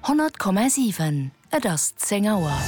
100,7 Et ass 10 Auer.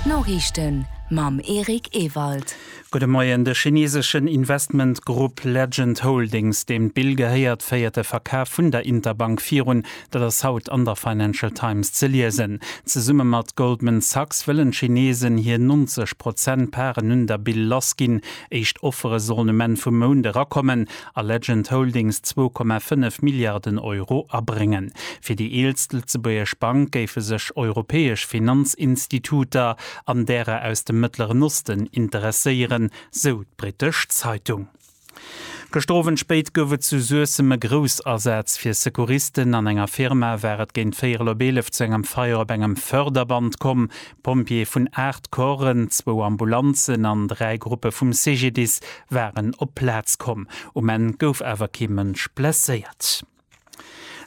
D'Noriichten mam Eric Ewald. Gudde Moien. De chineseschen Investmentgrupp Legend Holdings, deem d'Bill gehéiert, féiert e Verkaf vun der Interbank virun. Dat ass haut an der Financial Times ze liesen. Zesumme mat Goldman Sachs wëllen d'Chinesen hir 90 Prozent Paren un der Bill lassginn. Éischt Offere sollen um Enn vum Mount erakommen. a Legend Holdings 2,5 Milliarden Euro abréngen. Fir déi eelst lëtzebuergesch Bank géife sech europäesch Finanzinstituter an därer aus dem Mëttleren Osten interesséieren, sou d'brittesch Zeitung. Gëschter Owend spéit gouf et zu Suessem e Groussasaz fir Secouristen. An enger Firma war et géint véierel op eelef zu engem Feier op engem Förderband komm. D'Pompjeeë vun 8 Corpsen, zwou Ambulanzen an dräi Gruppe vum CGDIS waren op d'Plaz komm. Um Enn gouf awer kee Mënsch blesséiert.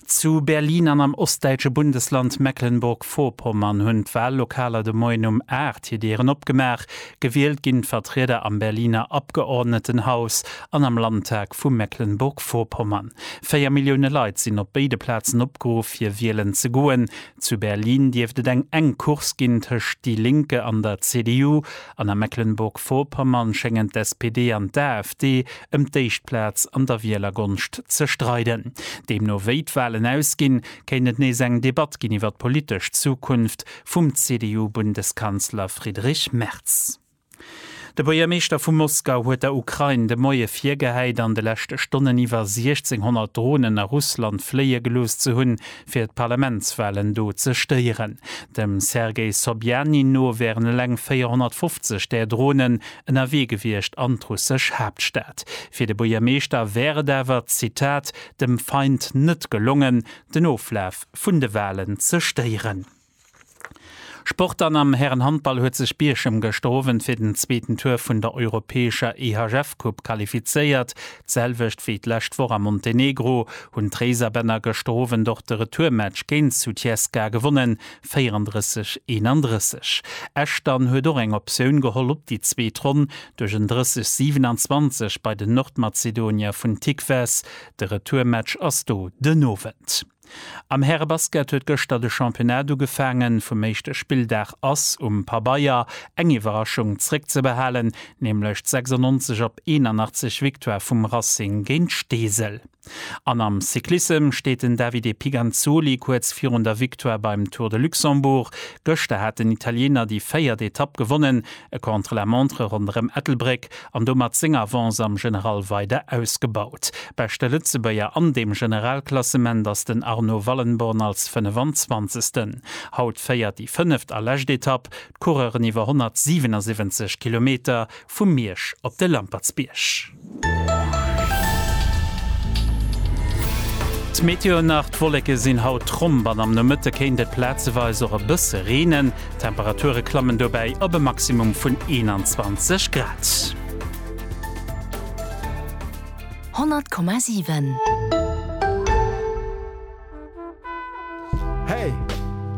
Zu Berlin an am ostdäitsche Bundesland Mecklenburg-Vorpommern hunn d'Wallokaler de Moien um 8 hir Dieren opgemaach. Gewielt ginn d'Vertrieder am Berliner Abgeordnetenhaus an am Landtag vu Mecklenburg-Vorpommern. Véier Millioune Leit sinn op béide Plazen opgeruff, fir wielen ze goen. Zu Berlin dierft et eng enk Course ginn tëscht Die Linke an der CDU, an a Mecklenburg-Vorpommern schéngen d'SPD an d'AfD ëm d'éischt Plaz an der Wielergonscht ze streiden. Deemno wéi d'Walen ausginn, kéint et nees eng Debatt ginn iwwer d'politesch Zukunft vum CDU-Bundeskanzler Friedrich Merz. De Buergermeeschter vu Moskau huet der Ukrain de Moie virgehäit, an de leschte Stonnen iwwer 1.600 Dronen a Russland fléie gelooss ze hunn, fir d'Parlamentswalen do ze stéieren. Dem Sergei Sobjanin no wären eleng 450 där Dronen ënnerwee gewiescht an d'russesch Haaptstad. Fir de Buergermeeschter wär et awer, Zitat, dem Feind net gelongen, den Oflaf vun de Walen ze stéieren. Sport An am Härenhandball huet sech Bierchem gëschter Owend fir den zweeten Tour vun der europäescher EHF-Coupe qualifizéiert. D'selwecht wéi d'lescht Woch a Montenegro hunn d'Réiserbänner gëschter Owend och de Retourmatch géint Sutjeska gewonnen, 34, 31. Esch dann huet och eng Optioun geholl op déi zweet Ronn duerch en 30, 27 bei den Nordmazedonier vun Tikves. De Retourmatch ass do den Owend. Am Härebasket huet gëschter de Championnat ugefaangen. Vum éischte Spilldag ass um Pabeier eng Iwwerraschung zréckzebehalen, nämlech d' 96 op 81 Victoire vum Racing géint Steesel. An am Cyclissem steet den Davide Piganzoli kuerz virun der Victoire beim Tour de Luxembourg. Gëschter hat den Italiener déi véiert Etapp gewonnen, e Contre-la-montre ronderëm Ettelbréck an domat seng Avance am General weider ausgebaut. Beschte Lëtzebuerger an deem Generalklassement ass den Arno Wallenborn als 25. Haut féiert déi fënneft a lescht Etapp d'Coureuren iwwer 177 Kilometer vu Miersch op de Lampertsbierg. D'Meteo nach, D'Wolleke sinn haut tromp an am Nomëtte kéint et plazeweis och e bësse reenen. D'Temperature klammen dobäi op e Maximum vun 21 Grad. 100,7. Hey!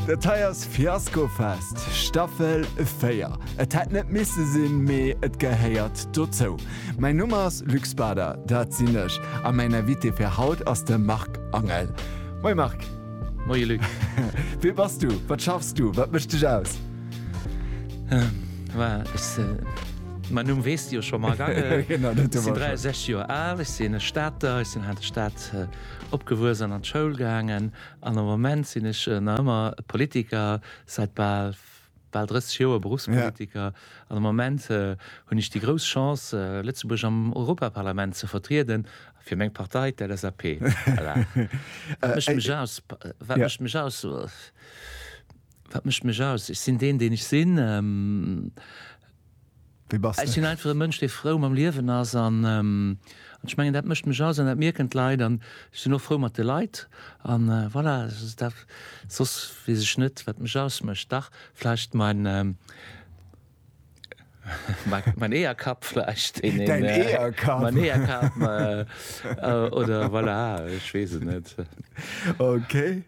Dat hei ass Fiaskofest Staffel 4. Et hätt net misse sinn, mee et gehéiert dozou. Mäin Numm ass Luc Bader, dat sinn ech, a mäin Invité fir haut ass de Marc Angel. Moie Marc! Moie Luc. Wee bass du? Wat schaffs du? Wat mécht dech aus? Mäin Numm weess de jo scho mol. Ech sinn 63 Joer al, ech sinn e Stater, ech sinn hei an der Stad opgewuess an an d'Schoul gaangen. An am Moment sinn ech nach ëmmer Politiker, säit bal bal 30 Joer Berufspolitiker an am Ament hunn ech déi grouss Chance, Lëtzebuerg am Europaparlament ze vertrieden, fir meng Partei, d'LSAP. Wat mécht mech aus? Wat mécht mech aus? Wat mécht mech aus? Ech sinn deen, deen ech sinn. Wéi bass Ech de? sinn einfach e Mënsch, dee frou mam Liewen ass an ech mengen, dat mécht mech aus an dat mierken d'Leit. An ech sinn och frou mat de Leit an voilà, dat, soss weess ech net, wat mech ausmécht. Dach vläicht mein, mein Eeërkapp vläicht, deen een, Däin Eeërkapp! Mein Eeërkapp oder voilà, ech weess et net. Okay.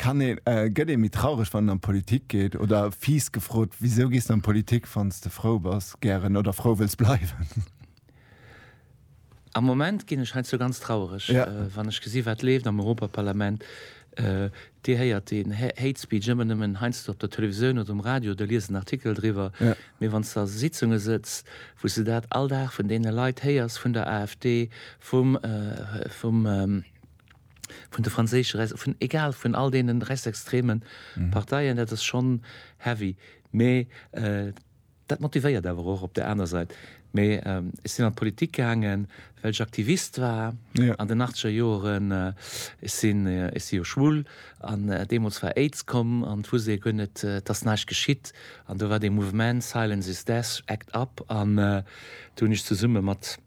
Kann een, gëtt ee méi traureg wann en an d'Politik geet? Oder fies gefrot, wisou gees de an d'Politik wann s de frou bass, gären oder frou wëlls bleiwen? Am Moment ginn ech heiansdo ganz traureg, wann ech gesinn, wat leeft am Europaparlament. Dir héiert deen Hate Speech ëmmer nëmmen heiansdo op der Televisioun oder um Radio oder liest en Artikel driwwer. Mee wann s de a Sitzunge sëtzt, wou s de dat all Dag vun deene Leit héiers, vun der AfD, vum, vum, vun de franséische, vun egal, vun all deenen rechtsextreme Parteien, dat ass schonn heavy. Mee dat motivéiert awer och op där aner Sait. Mee ech sinn an d'Politik gaangen, well ech Aktivist war an den achtzeger Joeren. Ech sinn, ech si jo schwul an deemools war Aids komm an wusst ee guer net, et ass näischt geschitt. An do war dee Mouvement Silence is Death, Act Up an do hunn ech zesumme mat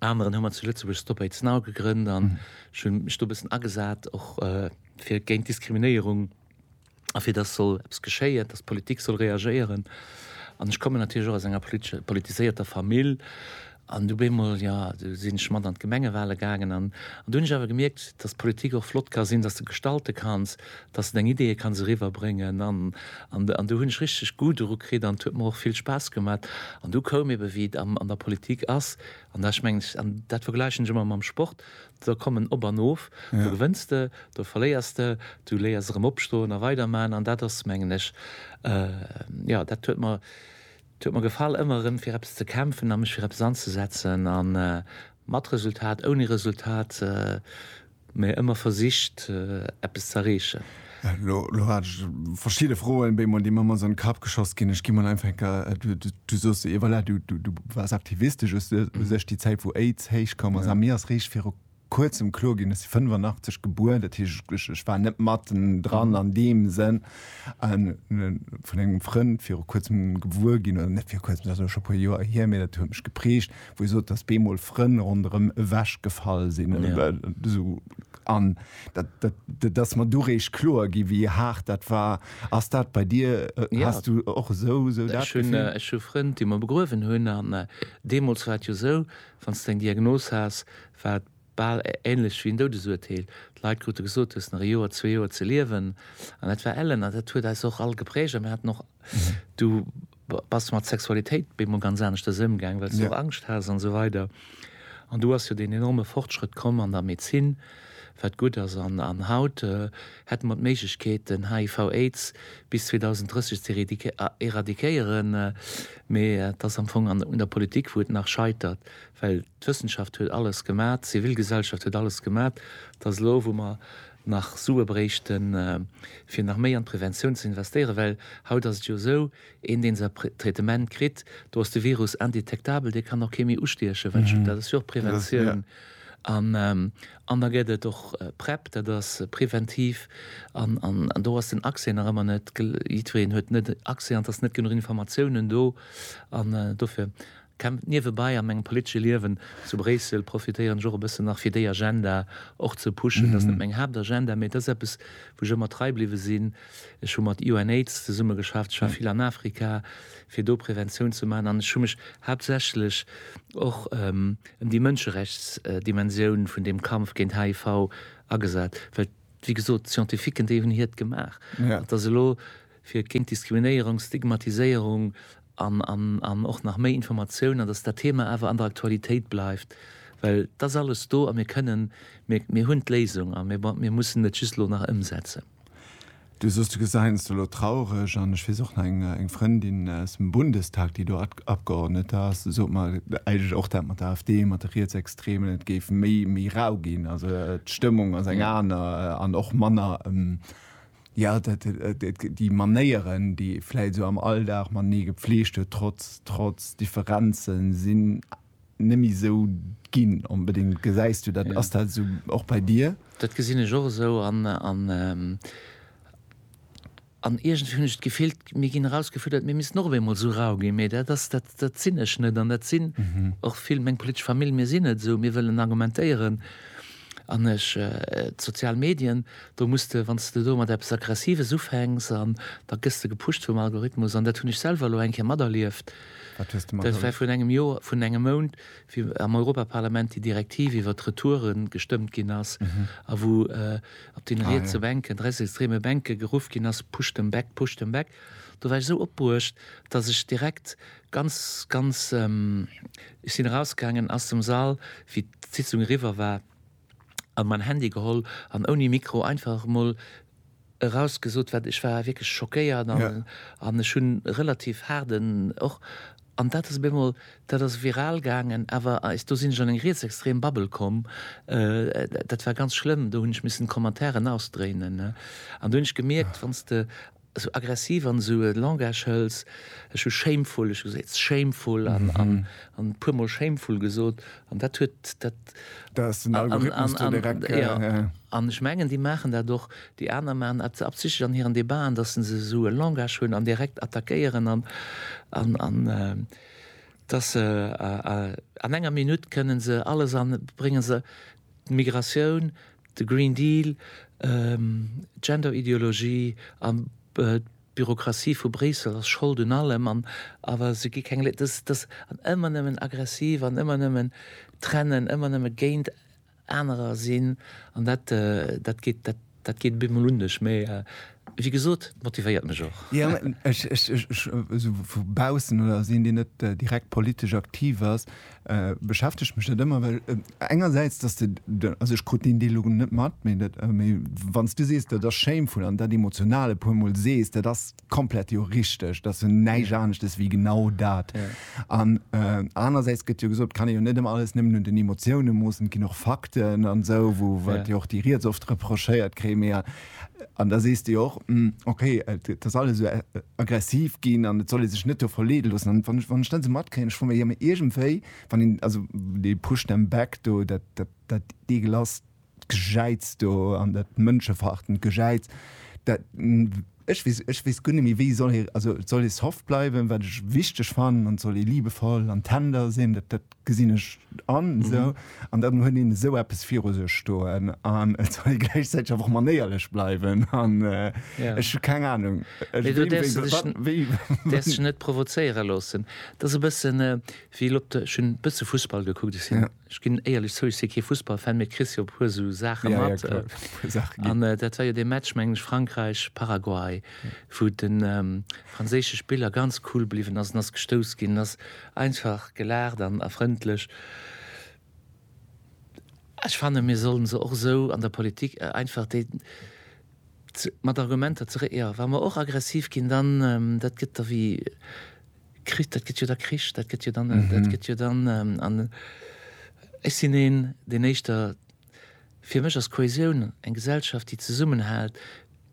aneren hu mer zu Lëtzebuerg Stop Aids Now gegrënnt an ech hu mech do e bëssen agesat och fir géint Diskriminéierung a fir datt soll eppes geschéien, datt d'Politik soll reagéieren. An ech kommen natierlech och aus enger politesche politiséierter Famill an du beemol, jo du sinn ech mat an d'Gemengewale gaangen an an do hunn ech awer gemierkt, datt d'Politik och flott ka sinn, datt s de gestalte kanns, dass en eng Idee kann esou riwwer bréngen an an do hunn ech richteg Goût doru kritt an et huet mer och vill Spaass gemat an du koum ebe wéi et an der Politik ass an da ech mengen ech an dat vergläichen ech ëmmer mam Sport da kommen op an of do gewënns de do verléiers de du léiers erëm opstoen a weider man an dat ass mengen ech jo dat huet mer dat huet mer gefall ëmmer erëm fir eppes ze kämpfen a mech fir eppes anzesetzen a mat Resultat ouni Resultat. Mee ëmmer versicht, eppes ze erreechen. Lo hat ech verschidde Froen, béi mer, déi mer mol so an de Kapp geschoss ginn. Ech gi mol einfach eng Kéier, du sos se, jo voilà, du waars aktivistesch u sech, déi Zäit, wou Aids héich koum ass. A mir ass réischt viru Kuerzem kloer ginn, ech si 85 gebuer, dat heescht, ech war net matten dran an deem Sënn. An vun engem Frënd viru Kuerzem gewuer ginn, oder net viru Kuerzem, dat ass elo scho e puer Joer hier, mee dat huet mech geprägt, wou e sot, dass bemol Frënn ronderëm ewech gefall sinn oder ja. esou an dat, dat, dass mer du réich kloer gi wéi haart dat war. Ass dat bei dir äh, ja. hast du och esou esou dat? Ech hunn äh, hu Frënn, déi mer begruewen hunn an äh, deemols war et jo esou, wann s eng Diagnos has, war et bal änlech wéi en Doudesurteel. D'Leit krute gesot, du hues nach e Joer, zwee Joer ze liewen an dat war ellen an dat huet eis och all gepräägt a mir haten och mhm. du Bass du mat Sexualitéit bemol ganz aneschters ëmgaang, well s du och Angscht has an esou weider. An do ass jo deen enorme Fortschrëtt komm an der Medezin, wat gutt ass. An haut hätte mer d'Méiglechkeet, den HIV, Aids bis 2030 ze eradiquéieren. Mee et ass am Fong un der Politik, wou et nach scheitert, well d'Wëssenschaft huet alles gemat, d'Zivilgesellschaft huet alles gemat. Et ass elo, wou mer nach Sue bréichten, fir nach méi an d'Preventioun ze investéieren, well haut ass et jo esou, een, dee säi Traitement kritt, do ass de Virus indetektabel, dee kann och kee méi ustiechen, well just dat ass jo och Preventioun. An da gëtt et och Prep, dat ass preventiv, an do ass den Accès nach ëmmer net, jiddwereen huet net Accès an et ass net genuch Informatiounen do an dofir. Kämpft niewebai a mengem politesche Liewen zu Bréissel, profitéieren ech och e bëssen nach fir déi Agenda och ze pushen. Ass net meng Haaptagenda, mee et ass eppes wou ech ëmmer trei bliwwe sinn. Ech hu mat UNAIDS zesumme geschafft, ech war vill an Afrika fir do Präventioun ze maachen an ech hu mech haaptsächlech och ëm déi Mënscherechtsdimensioun vun deem Kampf géint HIV agesat, well wéi gesot d'Scientifiquen déi hunn hiert gemaach. Et ass elo. fir géint Diskriminéierung, Stigmatiséierung an och nach méi Informatioun an datt dat Thema awer an der Aktualitéit bleift, well et ass alles do a mir kënnen, mir hunn d'Léisung a mir mussen et just elo nach ëmsetzen. Du soss, du gesäins elo traureg an ech weess och nach eng Frëndin aus dem Bundestag, déi do Abgeordnete ass, déi sot mer eigentlech och dat mat der AfD, mat de Rietsextremen, et géif méi rau ginn, also d'Stëmmung ass eng aner an och manner. Ja, dat, déi Manéieren, déi ee vläit esou am Alldag matenee gepfleegt huet, trotz, trotz Differenzen, sinn net méi esou ginn, onbedéngt. Gesäis du dat, ass dat esou och bei dir? Dat gesinn ech och esou an, an, an iergendwéi hunn ech d'Gefill, mir ginn erausgefuerdert, mir missten och op eemol esou rau ginn. Mee dat ass, dat, dat sinn ech net an dat sinn och vill meng politesch Famill. Mir sinn net esou, mir wëllen argumentéieren. An ech, d'sozial Medien, do muss de, wann s de do mat eppes Aggressives ufänks an da gëss de gepusht vum Algorithmus an dat hunn ech selwer elo eng Kéier materlieft, Wat hues de dat war materlieft? virun engem Joer, vun engem Mount, wéi am Europaparlament déi Direktiv iwwert d'Retouere gestëmmt ginn ass a wou op deene Ah rietse jo. Bänken, rechtsextreme Bänke geruff ginn ass, Push them back, push them back. Do war ech esou opbruecht, dass ech direkt Ganz, ganz, ech sinn erausgaangen aus dem Sall, wéi d'Sitzung eriwwer war, an mäin Handy geholl an ouni Mikro einfach emol erausgesot, wat ech war wierklech schockéiert an ech hunn relativ haarden och, an dat ass op eemol, dat ass viral gaangen, awer eis, do sinn ech an eng rietsextrem Bubble komm, dat war ganz schlëmm, do hunn ech missen d'Commentairen ausdréinen, an do hunn ech gemierkt, wann s de. esou aggressiv an esou e Langage hëls, ech hu shameful, ech hu se it's shameful an an an e puermol shameful gesot an dat huet dat Da ass den Algorithmus do direkt, ja, ja. An ech mengen, déi maachen dat och, déi aner maachen dat absichtlech an hiren Debaten, datt se esou e Langage hunn an direkt attackéieren an an an datt se an enger Minutt kënnen se alles an bréngen se d'Migratioun, De Green Deal, d'Genderideologie an d'Bürokratie vu Bréissel ass Schold un allem an awer se gi keng Lé-, dass, dass, an ëmmer nëmmen aggressiv an ëmmer nëmmen trennen, ëmmer nëmme géint anerer sinn an dat, dat geet, dat, dat geet op eemol un ech. Mee wéi gesot, et motivéiert mech och. Jo, ech, ech, ech, ech, esou vu baussen oder als een, deen net direkt politesch aktiv ass, Beschäftegt mech dat ëmmer, well engersäits, dass de, also ech krut deen Deel elo net mat, mee dat, mee wann s du sees, dat ass shameful an dat Emotional e puermol sees, dat ass komplett jo richteg. Dat ass jo näischt aneschtes wéi genau dat. An anersäits gëtt jo gesot, et kann ee jo net ëmmer alles nëmmen un den Emotiounen moossen, et ginn och Fakten an esou, wou, wat jo och déi riets oft reprochéiert kréien. Mee An da sees de jo och, ok, et ass alles esou aggressiv ginn an et soll ee sech net do verleede loossen. An wann, wann ech dann esou matkréien, ech fro mech, jo mee iergendwéi, wann een, also dee push them back do, dat, dat, dat eegelasst Gejäiz do an dat mënscheverachtend Gejäiz, dat, ech weess, ech weess guer net méi, wéi soll ee, also et soll ee soft bleiwen, wat ech wichteg fannen, an et soll ee liebevoll an tender sinn, dat, dat, Gesinn ech an, esou. An dann huet een esou eppes viru sech stoen an et soll ee gläichzäiteg awer och manéierlech bleiwen an ech hu keng Anung, wéi. Do däerfs de dech, däerfs dech net provozéiere loossen. Dat ass e bëssen, wéi elo op der, ech hunn e bësse Fussball gekuckt, ech sinn, ech ginn éierlech zou, ech si kee Fussballfan, mee kriss jo e puer esou Saache mat. Jo, jo, kloer, e puer Saache ginn. An dat war jo dee Match, mengen ech, Frankräich, Paraguay, wou de franséische Spiller ganz cool bliwwen ass an ass gestouss ginn, ass Einfach gelaacht an a frëndlech. Ech fannen mir sollen se och esou an der Politik einfach déi ze mat Argumenter ze re jo wa mer och aggressiv ginn dann dat gëtt da wéi Kri dat gëtt jo da Krich dat gëtt jo dann dat gëtt jo dann an ech sinn een deen éischter Fir mech ass Kohäsioun eng Gesellschaft, déi zesummenhält.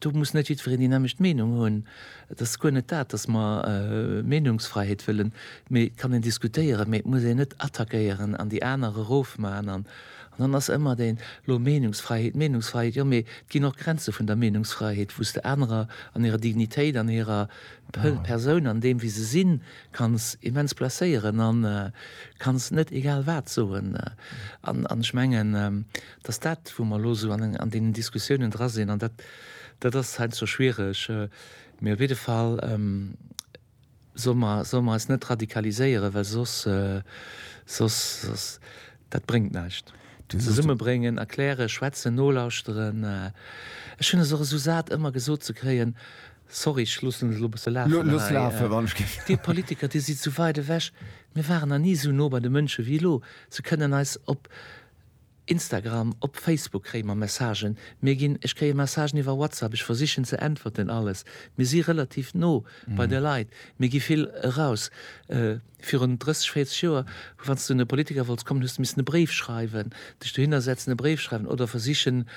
Do muss net jiddwereen déi nämmlecht Meenung hunn. Et ass guer net dat, dass mer Meenungsfräiheet wëllen, mee et kann een diskutéieren, mee et muss een net attackéieren an déi aner erofman. An dann ass ëmmer deen, elo Meenungsfräiheet, Meenungsfräiheet, jo mee et ginn och Grenze vun der Meenungsfräiheet, wou s de anerer an hirer Dignitéit, an hirer Persoun, an deem wéi se sinn, Kanns immens blesséieren an kanns net egal wat soen. An ech mengen, dass dat wou mer elo esou an deenen Diskussiounen dra sinn, an dat dat ass heiansdo schwiereg, mee op jidde Fall solle mer solle mer eis net radikaliséieren, well soss soss soss dat bréngt näischt. Zesummebréngen, erklären, schwätzen, nolauschteren. Ech hunn es och esou sat ëmmer gesot ze kréien, Sorry, ech loossen et elo bësse lafen hei. Looss lafen, wann ech géif. Dir Politiker, Dir sidd sou weit ewech. Mir waren nach ni sou no bei de Mënsche wéi elo. Se kënnen eis op Instagram, op Facebook kréie mer Messagen. Mir ginn, ech kréie Messagen iwwer WhatsApp, ech versichen ze äntwerten, alles. Mir si relativ no bei de Leit. Mir gi vill eraus. Virun 30, 40 Joer, wann s du un e Politiker wollts kommen, hues du missen e Bréif schreiwen, dech dohinner setzen, e Bréif schreiwen oder versichen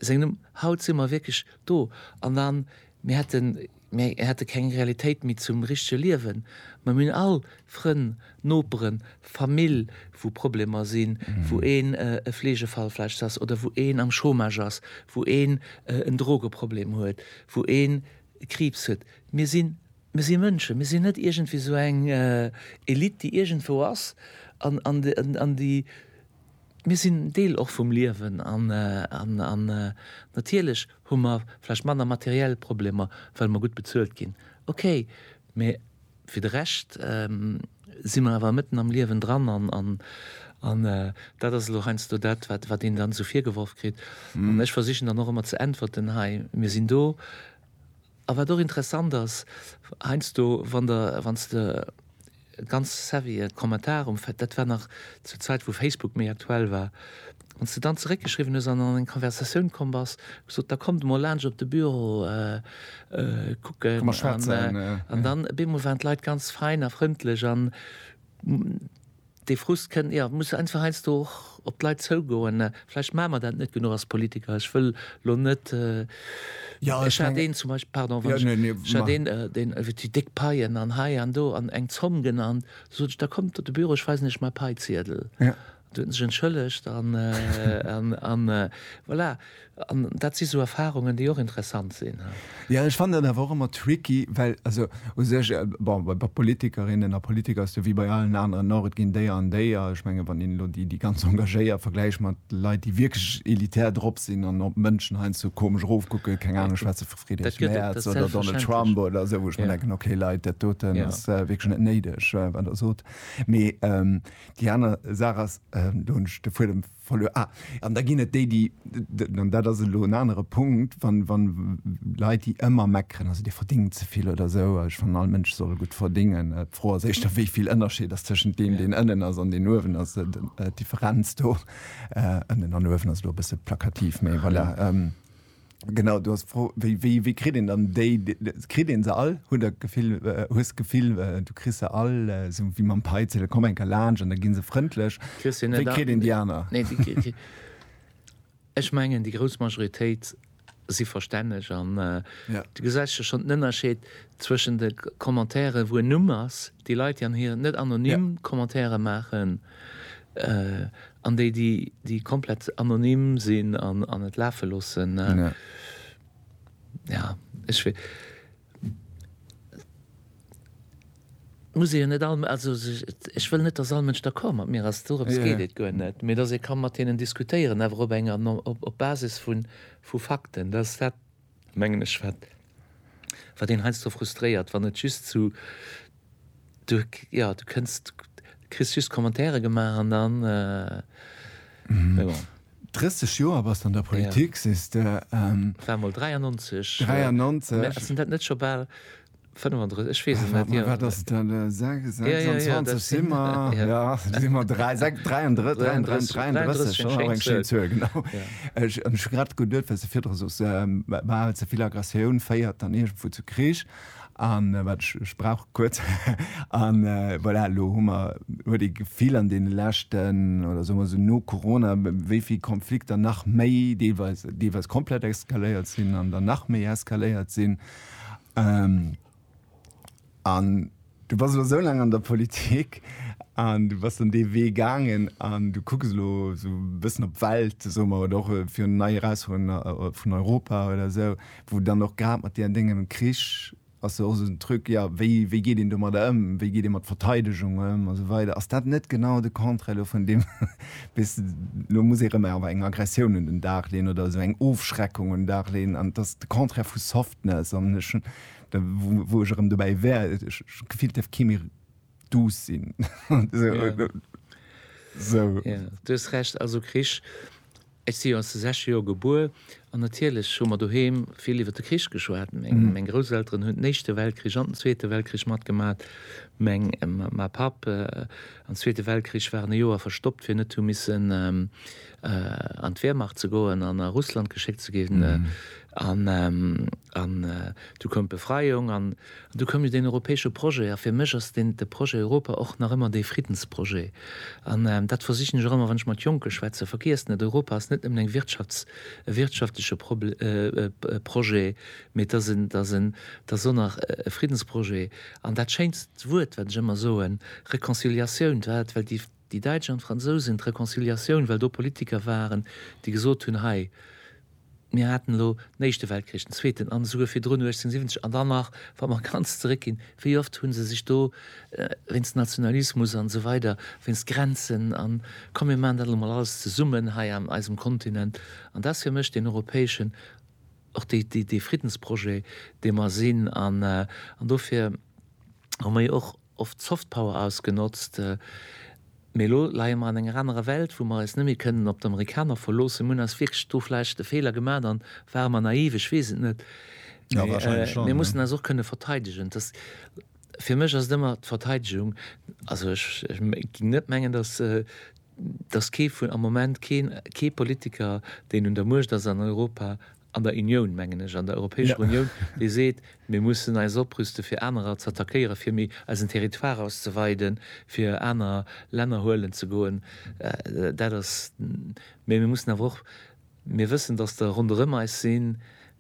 seng Numm. Haut si mer wierklech Do an an, mir hätten, mir hätte keng Realitéit méi zum richtege Liewen. Mä mir hunn all Frënn, Noperen, Famill, wou Problemer sinn, wou een e Fleegefall vläicht ass oder wou een am Chômage ass, wou een en Drogeproblem huet, wou een Kriibs huet. Mir sinn, mir si Mënschen, mir sinn net iergendwéi esou eng Elite, déi iergendwou ass an, an, an déi Mir sinn en Deel och vum Liewen an natierlech hu mer vläicht manner materiell Problemer, well mer gutt bezuelt ginn, okay, mä fir de Rescht si mer awer mëtten am Liewen dran an dat ass elo heiansdo dat, wat een dann esou virgeworf kritt. An ech versichen dann och ëmmer ze äntwerten, hei, mir sinn do A wat och interessant ass, heiansdo wann der, wann s de ganz savvy e Kommentar um Fa, dat war nach zur Zäit wou Facebook méi aktuell war, wann s de dann zeréckgeschriwwen hues an an eng Konversatioun komm bass, gesot, da kommt emol laanscht op de Büro kucken. Komm emol schwätzen. An dann op eemol waren d'Leit ganz fein a frëndlech an. Dee Frust kënnt, jo, muss einfach heiansdo och op d'Leit zougoen. Vläicht maache mer dat net genuch als Politiker. Ech wëll elo net, ech hat een zum Beispill, pardon, wann ech, ech hat een, deen huet déi déck Paien an hei an do an eng Zomm genannt. Du sot ech, da kommt op de Büro, ech weisen iech mäi Paiziedel. An du huet en sech entschëllegt an, an, an voilà. An dat si sou Erfarungen, déi och interessant sinn. Jo, ech fannen dat awer och ëmmer tricky, well also u sech, bon, bei Politikerinnen a Politiker ass et jo wéi bei allen aneren och, et ginn déi an déi a ech mengen, wann een elo déi, déi ganz engagéiert vergläicht mat Leit, déi wierklech elitär drop sinn an op d'Mënschen heiansdo komesch erofkucken, keng Ahnung, ech schwätze vu Friedrich Merz oder Donald Trump oder esou, wou ech mir denken, okay Leit, dat doten ass wierklech net néideg, wat Der sot. Mee déi aner Saach ass, do hunn ech de Fuedem. Verluer. Ah, an da ginn et déi, déi, an dat ass elo en anere Punkt, wann, wann Leit, déi ëmmer meckeren, also Dir verdéngt ze vill oder esou, ech fannen, all Mënsch soll gutt verdéngen. D'Fro ass éischter, wéi vill Ënnerscheed ass tëschent deem, deen ënnen ass an deen uewen ass. D'Differenz do, ënnen an uewen, ass elo e bësse plakativ, mee voilà. Genau, du hast d'Fro, wéi, wéi, wéi kritt een dann déi, kritt een se all? Hutt der d'Gefill, hues d'Gefill, du kriss se all, esou wéi mam Peitzel, komm eng Kéier laanscht an da gi se frëndlech. Kriss se net all. Wéi kritt een déi aner? Nee, déi kritt een, ech mengen, déi grouss Majoritéit si verstänneg an du gesäis jo schonn den Ënnerscheed zwëschen de Commentairen, wou en Numm ass, déi Leit, déi an hir net anonym Commentaire maachen, An déi, déi komplett anonym sinn an et lafe loossen, jo, ech wee. Et muss ee jo net all, also ech wëll net, datt all Mënsch d'accord mat mir ass, dorëms geet et guer net, mee datt ee ka mat hinnen diskutéieren, awer op enger, op Basis vu Fakten. mengen ech, wat, wat een heiansdo frustréiert, wann et just zu, du, jo, du kënns, du kriss just Commentaire gemaach an dann, mee bon. 30 Joer bass de an der Politik, sees de. War mol 93. 93. Mä ass denn dat net scho bal 35, ech weess et net. Mä wat ass et dann? 26 si mer, jo, si mer 33, 33, 33, ass och eng schéin Zuel, genau. Ech hu mech grad geduet, wéi s de virdru sos, bal ze vill Aggressioun féiert dann iergendwou zu Krich. An wat ech, ech brauch e kuerz. An voilà, elo hu mer, huet ee d'Gefill an deene leschten, oder soe mer esou no Corona, wéi vill Konflikter nach méi deelweis, deelweis komplett eskaléiert sinn an dann nach méi eskaléiert sinn, An du bass elo esou laang an der Politik an du bass dann dee Wee gaangen an du kucks elo esou e bëssen op d'Welt, soe mer, oder och virun nei Erausfuerderunge vun Europa oder esou, wou dann och grad mat där dengem Krich ass jo och esou en Truc, jo, wéi, wéi geet een domadder ëm, wéi geet ee mat Verteidegung ëm a sou weider. Ass dat net genau de Contraire elo vun deem, bis elo muss ee rëm awer eng Aggressioun un den Dag leeën oder esou eng Ofschreckung un den Dag leeën an et ass de Contraire vu Softness an ech hunn da wou ech erëm dobäi wär, ech hu gefillt et dierf kee méi douce sinn esou. Jo, du hues Recht, also Krich, ech si jo an de sechzeger Joer gebuer an natierlech hu mer doheem vill iwwer de Krich geschwat. Meng Grousselteren hunn den Éischte Weltkrich an den Zweete Weltkrich matgemaach, meng Ma Papp Am Zweete Weltkrich war en e Joer verstoppt, fir net hu missen an d'Wehrmacht ze goen an a Russland geschéckt ze ginn. An du koum d'Befreiung an du koum jo deen europäesche Projet. A fir mech ass deen, de Projet Europa och nach ëmmer dee Friddensprojet. An dat versichen ech och ëmmer, wann ech mat Jonke schwätzen, Vergiesst net, Europa ass net nëmmen eng Wirtschafts-, e wirtschaftleche Prob, Projet, Mee et ass en, et ass och nach e Friddensprojet. An dat schéinst Wuert, wat ech ëmmer soen, Reconciliatioun, dat well déi, déi Däitsch an d'Fransousen d'Reconciliatioun, well do Politiker waren, déi gesot hunn, hei, mir haten elo den Éischte Weltkrich, den Zweeten an esouguer virdrun 1870 an dann nach, wa mer ganz zeréckginn, wéi oft hu se sech do wéinst Nationalismus an esou weider, wéinst Grenzen an, komm mir maachen dat elo mol alles zesummen hei an eisem Kontinent. An dat ass fir mech deen europäeschen och dee Friddensprojet, dee mer sinn, an dofir hu mer jo och oft d'Soft Power ausgenotzt. Mee elo leie mer an enger anerer Welt, wou mer eis net méi kënnen op d'Amerikaner verloossen. Mir hunn eis wierklech do vläicht e Feeler gemaat an ware mer naiv, ech weess et net. Mee mir mussen eis och kënne verteidegen. Dass, fir mech ass et ëmmer d'Verteidegung, also ech géing net mengen, dass dass kee vun, am Moment keen, kee Politiker, deen un der Muecht ass an Europa, an der Unioun mengen ech, an der Europäescher Unioun, dee seet, mir mussen eis oprüste fir anerer z'attackéieren, fir méi eisen Territoire auszeweiden, fir aner Länner huelen ze goen. Dat ass, mä mir mussen awer och, Mir wëssen, dass der ronderëm eis sinn,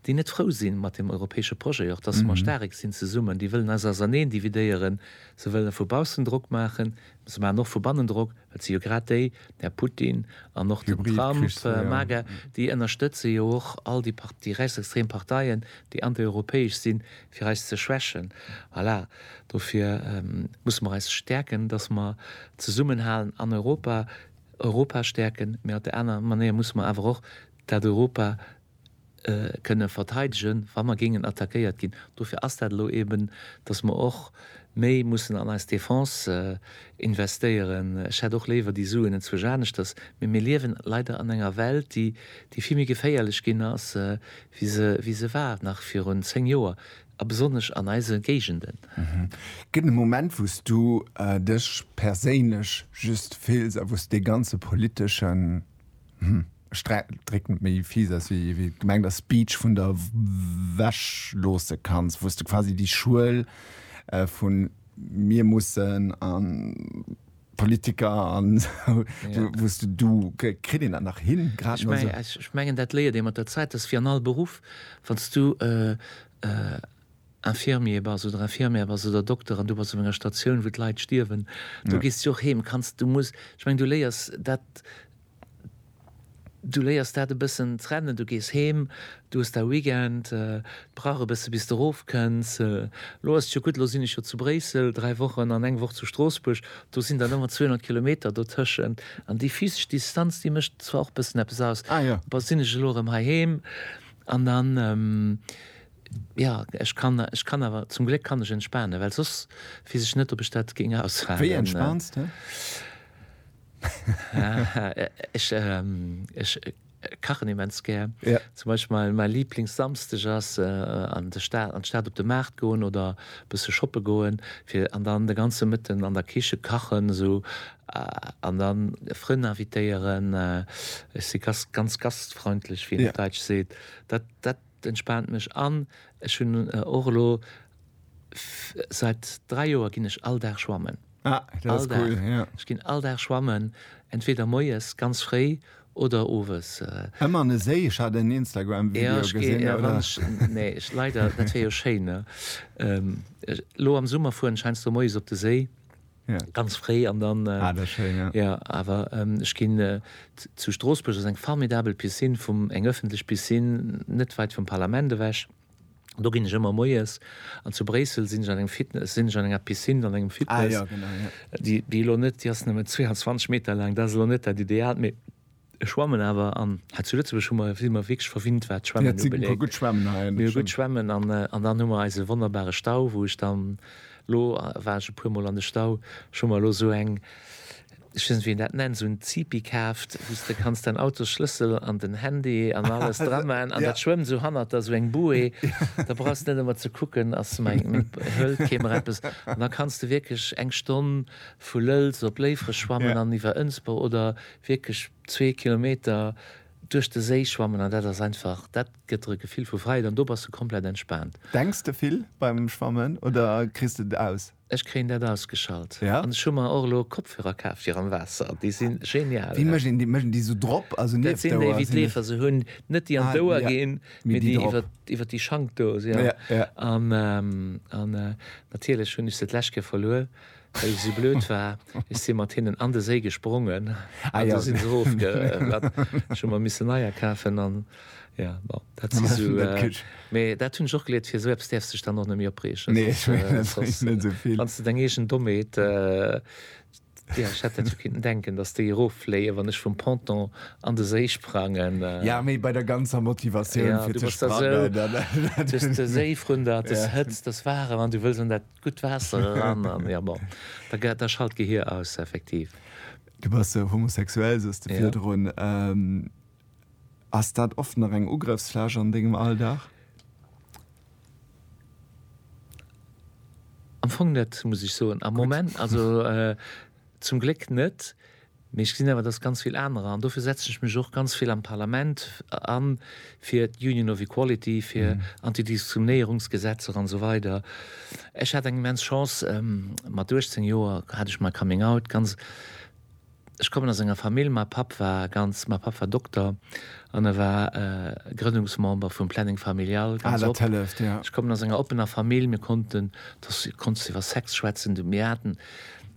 déi net frou si mat deem europäesche Projet, och dass mer staark sinn zesummen. Déi wëllen eis auserneen dividéieren. Se wëlle vu baussen Drock maachen, mä se maachen och vu bannen Drock, well et si jo grad déi, den Här Putin an och den Trump, MAGA, déi ënnerstëtze jo och all déi Par-, déi rechtsextrem Parteien, déi antieuropäesch sinn, fir eis ze schwächen. Voilà. Dofir musse mer eis stäerken, dass mer zesummenhalen an Europa. Europa stäerken, mee op där anerer Manéier musse mer awer och dat Europa kënne verteidegen, wa mer géingen attackéiert ginn. Dofir ass dat elo eben, dass mer och méi mussen an eis Defense investéieren. Ech hätt och léiwer déi Suen enzwuesch aneschters, mee mir liewen leider an enger Welt, déi vill méi geféierlech ginn ass, wéi se war nach virun zéng Joer. A besonnesch an eise Géigenden. Gëtt e Moment, wou s du dech perséinlech just fills a wou s dee ganze politesche, hm, ech drécken et méi fies aus, wéi et gemengt ass, Speech vun der Wäsch loosse kanns, wou s de quasi déi Schuel vu mir mussen an, Politiker an wou's de du kritt een dat nach hin? Ech mengen dat léiert ee mat der Zäit, dat ass wéi an all Beruff, wann s du Infirmier bass oder Infirmière bass oder Dokter an du bass op enger Statioun wou d'Leit stierwen, do gees du jo och heem, kanns, du muss, ech mengen du léiers dat Du léiers dat e bëssen trennen, du gees heem, du hues dau Weekend, brauch e bësse bis de rof kënns, lo ass et jo gutt, lo sinn ech jo zu Bréissel 3 Wochen an eng Woch zu Stroossbuerg, do sinn dann ëmmer 200 Kilometer dotëschent an déi physesch Distanz déi mécht zwar och bëssen eppes aus, bon sinn ech elo erëm heiheem an dann jo ech kann, ech kann awer zum Gléck kann ech entspanen, well soss weess ech net ob ech dat géing aushaalen. Wéi entspans de? Ech kachen immens gär. Zum Beispill mäi Liblingssamsteg ass an d'Stad op de Maart goen oder e bësse shoppe goen an dann de ganze Mëtten an der Kiche kachen esou an da Frënn invitéieren. Ech si ganz gastfreundlech, wéi een op Däitsch seet. Dat entspaant mech an ech hunn och elo Seit 3 Joer ginn ech all Dag schwammen. Ah, dat ass cool, ja. Ech ginn all Dag schwammen, entweder moies ganz fréi oder owes. Ëmmer an e Séi? Ech hat en Instagram-Video gesinn. Jo, ech ginn, ech, nee, ech, leider, dat wier jo schéin, ne? Elo am Summer fueren ech heiansdo moies op de Séi, ganz fréi an dann. Ah, dat ass schéin, ja. Jo, awer ech ginn, zu Stroossbuerg ass eng formidabel Piscine vum, eng ëffentlech Piscine net weit vum Parlament ewech. Do ginn ech ëmmer moies. An zu Bréissel sinn ech an engem Fitness, sinn ech an enger Piscine, an engem Fitness. Ah ja, genau, ja. Déi, déi elo net, déi ass nëmme 22 Meter laang, dat ass elo net dat Idealt, mee ech schwammen awer. An hei zu Lëtzebuerg hu mer, si mer wierklech verwinnt, wat d'Schwammen ubeléngt. Ja, et si guer gutt Schwammen hei, dat stimmt. Gutt Schwammen an, an dann hu mer eise wonnerbare Stau, wou ech dann, elo war ech e puer mol an de Stau, ech hu mer elo esou eng, Ech weess net wéi een dat nennt, esou en Zipi kaaft, wou s de kanns däin Autosschlëssel an den Handy an alles dra man an dat schwëmmt esou hannert der, esou eng Bouée, da brauchs de net ëmmer ze kucken, ass mäi, hëlt kee mer eppes an da kanns de wierklech eng Stonn vu Lëlz op Léifreg schwammen an iwwer Ënsber oder wierklech zwee Kilometer duerch de Séi schwammen an dat ass einfach, dat gëtt der e Gefill vu Fräiheet an do bass de komplett entspaant. Denks de vill beim Schwammen oder kriss de et aus? Ech kréien dat ausgeschalt ja an ech hu mer och elo Kopfhörer kaf fir am Waasser. Déi si genial. Wéi mécht een déi? Mécht een déi sou drop? Also nieft d'Ouer? Dat sinn déi wéi d'Leefer se hunn, net déi an d'Ouer ginn, mee déi iwwer iwwer déi Schank do. Ja ja an an natierlech hunn ech se d'lescht Kéier verluer, well ech esou blöd war. Ech si mat hinnen an de Séi gesprongen an do si se ofge. Ech hu mer missen neier kafen an. Ja, bon, dat si sou, mee dat hunn ech och geliert, fir sou eppes däerfs dech dann och net méi opreegen. Nee, ech mengen, et bréngt net esou vill. Wann s de deng eegen Dommheet, jo, ech hätt dat jo kinnten denken, datt déi eroffléien, wann ech vum Ponton an de Séi sprangen. Ja, mee bei der ganzer Motivatioun, fir ze sprangen, dann. Jo, du bass da sou, dës Séi vrun der, dës Hëtzt, dës Waarem, an du wëlls an dat gutt Waasser eran, an jo, bon, da schalt d'Gehier aus, effektiv. Du bass homosexuell, sous de virdrun. Ass dat oft nach eng Ugrëffsfläch an dengem Alldag? Am Fong net, muss ech soen. Am Moment, also zum Gléck net. Mee ech gesinn awer, dass ganz vill anerer, an dofir setzen ech mech och ganz vill am Parlament an, fir d'Union of Equality, fir Antidiskriminéierungsgesetzer an esou weider. Ech hat eng immens Chance, mat 18 Joer hat ech my Coming Out ganz, Ech kommen aus enger Famill, ma Papp war ganz, ma Papp war Dokter an e war Grënnungsmember vum Planning Familial, ganz op. Ah, dat hëlleft, jo. Ech kommen aus enger oppener Famill, mir konnten, do ass, konntest du iwwer Sex schwätzen, du, mir haten,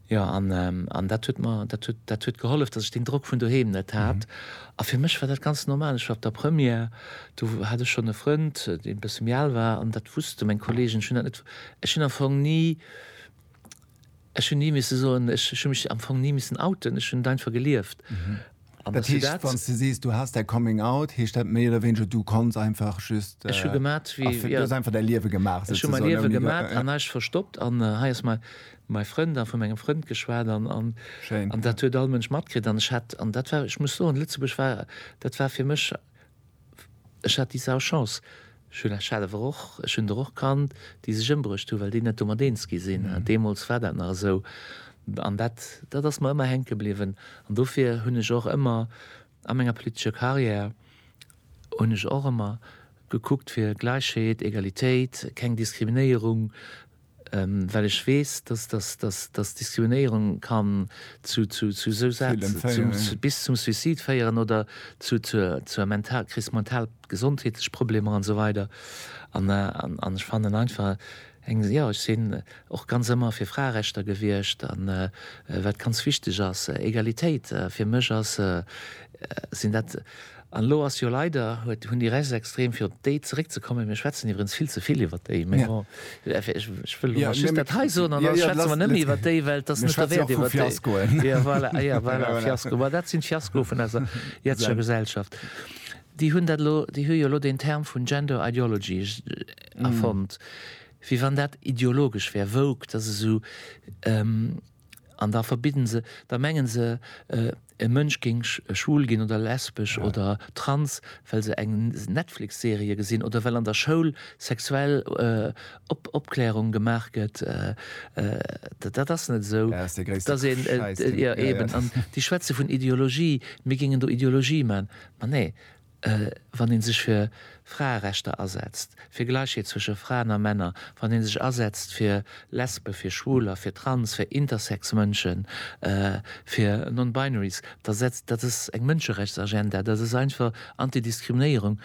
jo, an, an dat huet mer, dat huet, dat huet gehollef, dass ech deen Drock vun doheem net hat. A fir mech war dat ganz normal, ech war op der Première, do hat ech schonn e Frënd, dee e bësse méi al war, an dat wusste meng Kolleegen, ech hunn dat net, ech hunn am Fong ni, Ech hunn ni misse soen, ech hunn mech am Fong ni missen outen, ech hunn et einfach gelieft. An dat ass dat. Wanns de sees, du has däi Coming Out, heescht dat méi oder wéineger, du konns einfach just. Ech hu gemat wéi, jo. Du hues einfach däi Liewe gemaach, souzesoen. Ech hu mäi Liewe gemat an näischt verstoppt an hei ass mäi Frënd a vu mengem Frënd geschwat an dat huet all Mënsch matkritt an ech hat, an dat war, ech muss soen, Lëtzebuerg war, dat war fir mech. Ech hat déi sau Chance, ech hunn Här Schellefer och, ech hunn der och kannt, déi sech ëmbruecht hunn, well déi net domat eens gi sinn. Deemools war dat nach esou. An dat, dat ass mer ëmmer hänke bliwwen. An dofir hunn ech och ëmmer a menger politescher Karriär, hunn ech och ëmmer gekuckt fir Gläichheet, Egalitéit, keng Diskriminéierung, Well ech weess, dass Diskriminéierung kann zu sou Saache bis zum Suicide féieren oder zur Kris, mental gesondheetlech Problemer an esou weider. An ech fannen einfach, jo, ech sinn och ganz ëmmer fir Fraerechter gewiescht, wat ganz wichteg ass. Egalitéit, fir mech sinn dat, An elo ass jo leider, huet, hunn déi Rechtsextrem, fir op déi zeréckzekommen, mir schwätzen iwwerens vill ze vill iwwert déi, mee bon, ech wëll elo mol just dat hei soen an da schwätze mer net méi iwwert déi, well et ass net derwäert iwwert déi. Mir schwätze jo och vu Fiaskoen. Jo, voilà, ah jo, voilà, Fiasko, ma dat sinn d'Fiaskoe vun eiser jetzger Gesellschaft. Déi hunn dat elo, déi hu jo elo deen Term vun Gender Ideology erfonnt, wéi wann dat ideologesch wär, woke, dat ass esou. An da verbidden se, da mengen se e Mënsch géing schwul ginn oder lesbesch oder trans, well se eng Netflix-Serie gesinn oder well an der Schoul sexuell Opklärung gemaach gëtt. Dat ass net esou. Dat ass dee gréisste Schäiss, deen. Jo, eben. An déi schwätze vun Ideologie, mir géingen do Ideologie man. Ma nee, wann ee sech fir Fraerechter asetzt, fir Gläichheet zwësche Fraen a Männer, wann ee sech asetzt fir Lesben, fir Schwuler, fir Trans, fir Intersex Mënschen, fir Non-Binaries, da setzt, dat ass eng Mënscherechtsagenda, dat ass einfach Anti-Diskriminéierung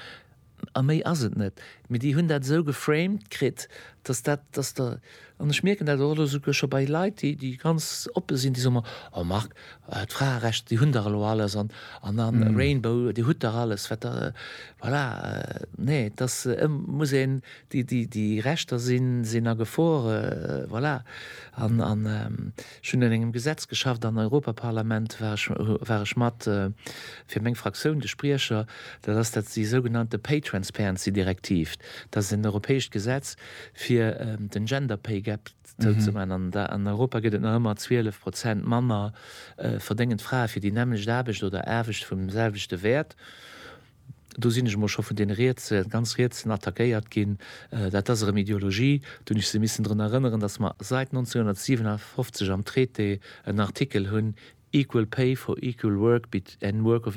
a méi ass et net. Mee déi hunn dat esou geframed kritt, datt dat, datt der, An ech mierken dat och elo souguer scho bei Leit, déi ganz oppe sinn, déi soe mer, oh Marc, d'Fraerechter, déi hunn der elo alles, an a Rainbow, Dir hutt der alles, wat der, voilà. Nee, et ass, et muss een, déi Rechter sinn a Gefor, voilà. An ech hunn un engem Gesetz geschafft am Europaparlament, war ech mat, fir meng Fraktioun, de Spriecher, dat ass déi sougenannte Pay Transparency Direktiv, dat ass en europäescht Gesetz, fir den Gender Pay Gap zouzemaachen, an an Europa gëtt et nach ëmmer 12 Prozent manner verdéngend Frae fir déi nämmlecht Aarbecht oder Aarbecht vum selwechte Wäert. Do sinn ech emol scho vun deene Rietse, ganz Rietsen attackéiert ginn. Dat ass erëm Ideologie. Do hunn ech se missen drun erënneren, datt mer seit 1957 am Traité en Artikel hunn, Equal pay for equal work and work of